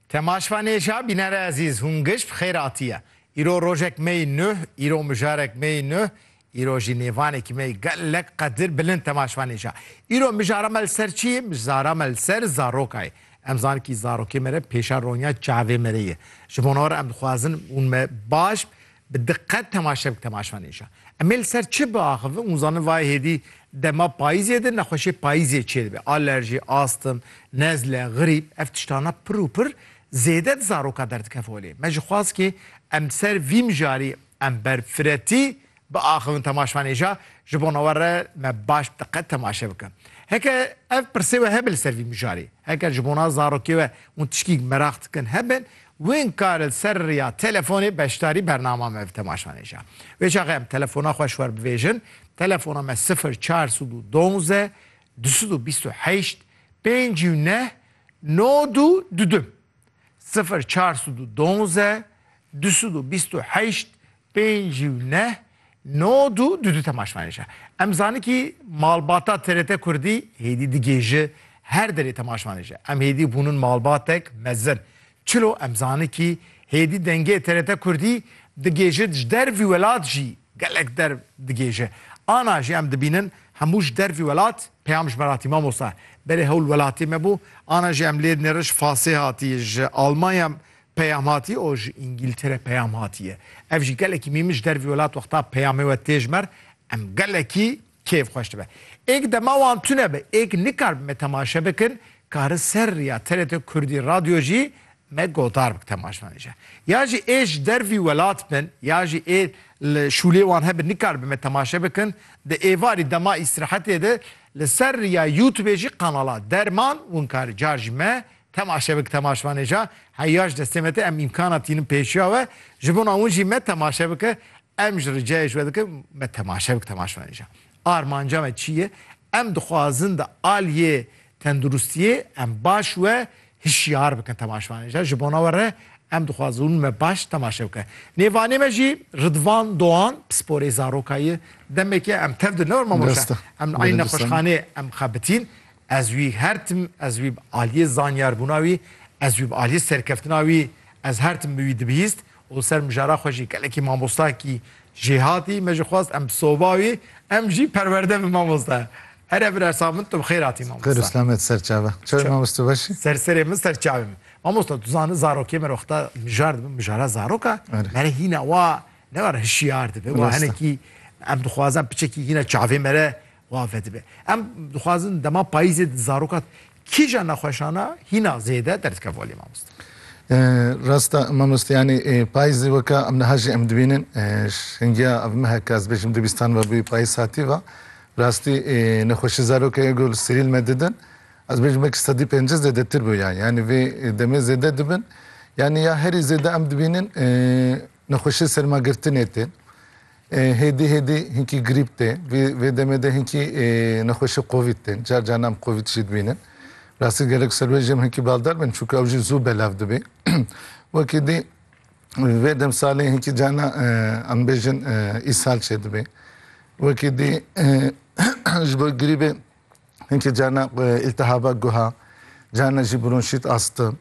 Temaşva nêşa bînere ezîz hûn giş bi xêr atiye. Îro rojek me yî nuh, îro mijarek me yî nuh, îro jî nêvanekî me yî gelek qedir bilind temaşva nêşa. Îro mijara me li ser çi yê? Mijara me li ser zaroka yê. Em zanin kî zarokê me re pêşa ronya çavê me re ye. Ji bo nor em dixwazin hûn me baş Bi diqet temaşe bik temaşan îşan. Em ê li ser çi biaxivin? Hûn zanin vayê hêdî dema payîzê de nexweşiyê payîzê çêdibe. Alerjî, astm, nezle, grîp ev tiştana pir û pir zêde di zaroka derdikeve holê. Me ji xwaz kê em ser vî mijarî em ber firetî biaxivin temaşan îşa ji bona we re me baş bi diqet temaşe bikin. Heke ev pirsê we hebe li ser vî mijarî, heker ji bona zarokê we hûn tişkîk meraq dikin hebin Wing kar li ser riya telefonê beşdarî bernama me bi temaşan e ja. Wê çaxê em telefona xwe ji xwe bivêjin, telefona me sifir çar sed û donze du sed û bîst û heşt pênc û neh no du du du sifir çar sed û donze du sed û bîst û heşt Pênc û neh, nod û du du temaşvanên ji Em zanikî malbata TRT Kurdî hêdî digê ji her derê temaşvanê ji Em hêdî bûnin malbatek mezin. Çilo Em zanikî hêdî dengê TRT Kurdî digê ji ji dervî welat jî gelek der digê ji Ana jî em dibînin hemû ji dervî welat peyam ji me re hatî Mamosta berê hewl welatê me bû Ana jî em lê nêriş fasê hatî ji Almanya Peyam hatî û ji Îngîltere peyam hatiye. Ev jî gelekî mî min ji dervî welat wexta peyamê we tê ji mer em gelekî kêf xweş dibe. Êk dema wan tune be êk nikar bi me temaşe bikin ka ri ser riya TRT Kurdî Radyo jî me gotar bik temaşvanê je. Ya jî ê ji dervî welat bin ya jî ê li şûlê wan hebin nikar bi me temaşe bikin di êvarî dema îstirahetê de li ser riya Youtubê jî kanala Derman winkarî car jî me Temaşe bik temaşvanê ja heya ji destê me tê em îmkana tînin pêşiya we ji bona wan jî me temaşe bike em ji ricayê ji we dikin me temaşe bik temaşvanê ja armanca me çi ye em dixwazin di aliyê tenduristiyê em baş we hişyar bikin temaşvanê ja ji bona we re em dixwazin me baş temaşe bike nêvanê me jî Ridvan Doan pisporê zaroka ye demekê em tev di ne wir mamoşa em eynî nexweşxanê em xebitîn Ez wî her tim, ez wî bi aliyê zanyarbûna wî, ez wî bi aliyê serkeftina wî, ez her tim bi wî dibihîst û li ser mijara xwe jî gelekî mamostayekî jê hatî. Me jî xwest em bi soba wî, em jî perwerde bin mamoste. Here birersa min, tu bi xêr hatî mamoste. Xêr û selamet ser çavan. Çawa yî mamoste tu baş î? Ser serê min, ser çavê min. Mamoste tu zani zarokê me re wexta mijar dibin, mijara zarok e, me re hîna wa ne were hişiyar dibe, wa hinekî em dixwazin piçekî hîna çavê me re xwe avedibe. Em dixwazin dema payîzê di zaroka kîja nexweşana hîna zêde derdikeve aliyê mamoste? Rast e mamoste yanî payîzê weke em niha jî em dibînin şingiya ev meheke ez bêjim du bîstan ve bûye payîz hatî ve rastî nexweşî zarokê ê gul sirîl me didin ez bêjim wekî sedî pêncî zêdetir bûye yanî vê demê zêde dibin yanî ya herî zêde em dibînin nexweşê sermagirtinê tên Hêdî hêdî hinkî grîp tê. Vî vê demê de hinkî nexweşî kovîd tên. Car car nam kovîd jî dibînin. Rastî gerek ser wê jî em hinkî baldar bin çunke ew jî zû belav dibê. Wekî dî vê demsalê hinkî carna em bêjin îshal çêdibê. Wekî dî ji bo grîbê Hinkî carna îltihaba guha, carna jî bronşît asta.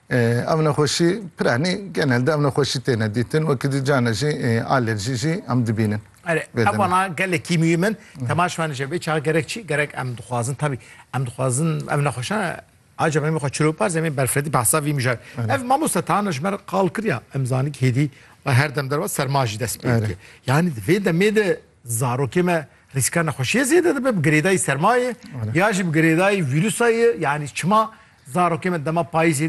Ev nexweşî piranî genelde ev nexweşî têne dîtin wekî dî carna jî alerjî jî em dibînin. Erê ev wana gelekî mîyim in temaş van ji vê çaxa gerek çi gerek em dixwazin tabî em dixwazin ev nexweşan Aca me xwe çilo par zemê berfredî behsa vî mijar. Ev mamosta tana ji me qal kiriya em zanî hêdî her dem derwa serma jî dest pê. Yanî di vê demê de Zarokê me rîska nexweşiyê zêde dibe bi girêdayî sermayê ya jî bi girêdayî vîrusayê yanî çima zarokê me dema payîzê